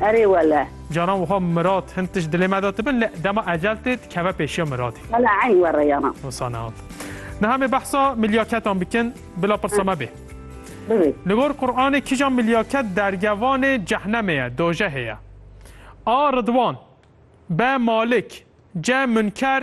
Erê wele. Caran wiha Mirat hin tişt dilê me de tibin lê dema ecel tê dikeve pêşiya Miratê. Wele eyn were yana. Wisa nehat. Niha em ê behsa milyaketan bikin bila pirsa me bê. Bibê. Li gor Quranê kîjan milyaket dergevanê cehnemê ye, dojehê ye? A. Ridwan B. Malik C. Munker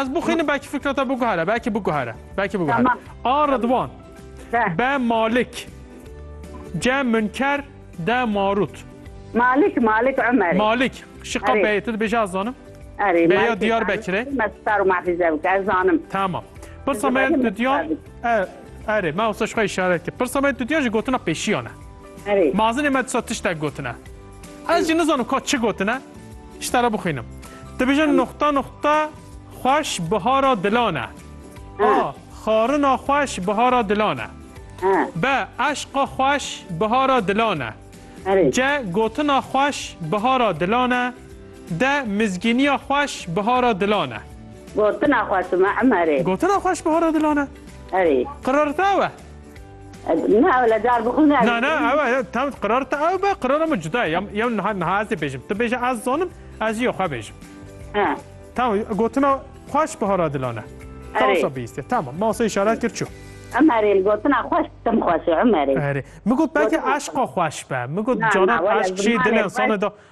Ez bixwînim belkî fikra te biguhere belkî biguhere belkî biguhere A Ridwan B Malik C Münker D Marut Malik Malik Ömer Malik şiqa beyê tu dibêje ez zanim Erê Beya diyar bekire Me star mafize bike ez zanim Tamam Pirsa me dudiyan Erê me wisa şiqa işaret kir Pirsa me dudiyan ji gotina pêşiyane Erê Mazinê me disa tiştek gotine Ez jî nizanim ka çi gotine, ji te re bixwînim. Dibêjin nuqta nuqta xweş bihara dilan e. A. Xarina xweş bihara dilan e. B. Eşqa xweş bihara dilan e. C. Gotina xweş bihara dilan e. D. Mizgîniya xweş bihara dilan e. Gotina xweş dime Emerê. Gotina xweş bihara dilan e. Erê. Qerar te ew e? Ne ew le car bixwîne. Na na ew e tam qirar te ew be qirara min cuda ye. Yam yam niha niha ez ê bêjim. Tu bêje ez zanim ez jî xwe bêjim. He. Tamam gotina xweş bi hara dilan e. Tawsa bîstê. Tamam ma wasa işaret kir çû. Emerê gotina xweş tim xweş e Emerê. Erê. Min got belkî eşqa xweş be. Min got canan eşq jî dilê insana da